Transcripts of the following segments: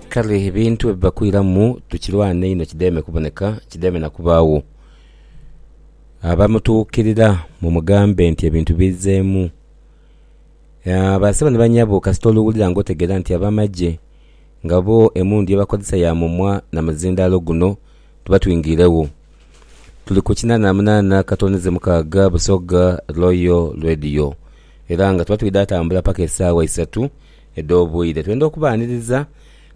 Kale ebintu bwe biba kwiramu tukirwane inho kidheeme kuboneka, kidheeme na kubaagho. Abamutuukirira mumugambe nti ebintu bizzeemu. Basabe ni banyabo kasita oluwulira ng'otegeera nti ab'amagye nga bo emmundu ye bakozesa ya mumwa na muzindaalo guno tuba twingeiregho. Tuli ku kinaana na munaana katonize mukaaga Busoga Royal Radio era nga tuba twidha tambula paka esaawa isatu. edh'obwire. Twenda okubaaniriza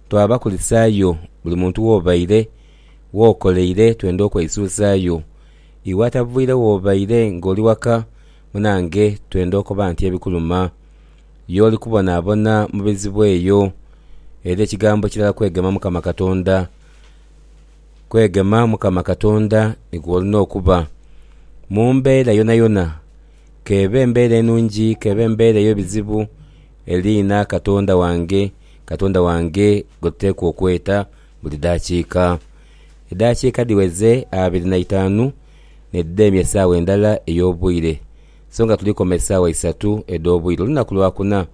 twabakulisaayo buli muntu w'obaire, w'okoleire. Twenda okweisuuzaayo iwe atavwire w'obaire ng'oli waka munange. Twenda okoba nti ebikuluma y'oli kubonaabona mu bizibu eyo. Era ekigambo kirala kwegema Mukama Katonda. Kwegema Mukama Katonda nikwo olina okuba mu mbeera yonayona. k'ebe mbeera enungi k'ebe mbeera ey'ebizibu, eriina Katonda wange, Katonda wange gwe tuteekwa okweta buli daakiika. Edaakiika dhiweze abiri na itaanu n'edidheemya esaawa endala ey'obwire, so nga tuli koma esaawa isatu edh'obwire olunaku Lwakuna.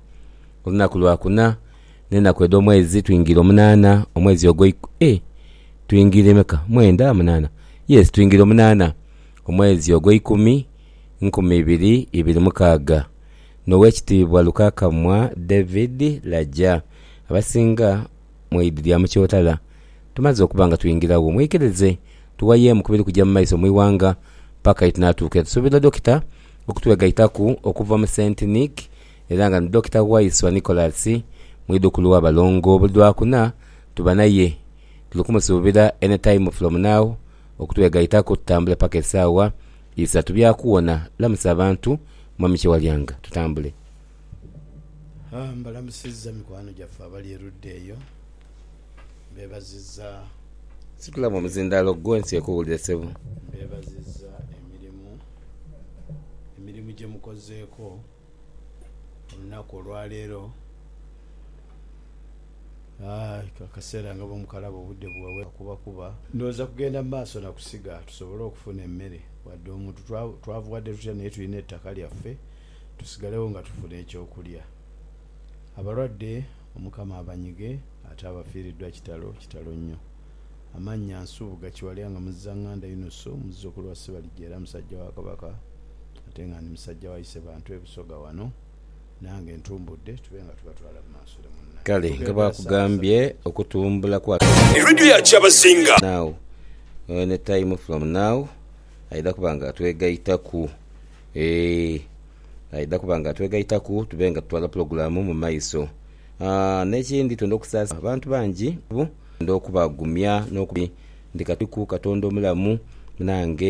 Olunaku Lwakuna n'enaku edh'omwezi twingira omunaana, omwezi ogwo eh, twingira emeka? Mwenda? Munaana? Yes, twingira omunaana, omwezi ogw'eikumi. nkumi ibiri ibiri mukaaga, n'Owekitiibwa Lukakamwa David Laja, abasinga mu idi lya Mukyotala. Tumaze okuba nga twingiragho, mwikirize tughayeemu ku biri kuja mu maiso mu ighanga paka ye tunaatuukira. Tusuubira Dokita okutwegaitaku okuva mu Saint Nick era nga ni Dokita Waiswa Nicholas, mwidhukulu wa balongo. Buli lwakuna tuba naye. Tuli kumusuubira any time from now okutwegaitaku tutambule paka esaawa Isa tubyakuwona lamusa abantu mwami kyewalyanga tutambule. Haa mbalamusiza mikwano gyaffe abali erudda eyo mbebaziza. Situla mu omuzindalo gwo ensi ekuwulire sebo. Mbebaziza emirimu emirimu gyemukozeeko. olunaku olwaleero akaseera nga bwemukalaba obudde buwewera kuba kuba. Ndowooza kugenda mu maaso na kusiga tusobole okufuna emmere wadde omuntu twavuwadde tutya naye tulina ettaka lyaffe tusigalewo nga tufuna eky'okulya. Abalwadde Omukama abanyige ate abafiiriddwa kitalo kitalo nnyo. Amannya, Nsubuga Kiwalya nga Muzizanganda Yunusu muzzukulu wa Sibalija era musajja wa Kabaka ate nga ndi musajja wa Isebantu e Busoga wano. Nange ntumbudde tube nga tubatwala mu maaso ni munna. Kale nga bwakugambye okutumbula kwa A radio ya Kyabazinga. Now or any time from now aidha kuba nga atwegaitaku eeh aidha kuba nga atwegaitaku tube nga tutwala pulogulamu mu maiso aah nekindi twendha okusasira abantu bangi. Nd'okubagumya n'okubakuuma, ndi Katuku, Katonda omulamu, nange.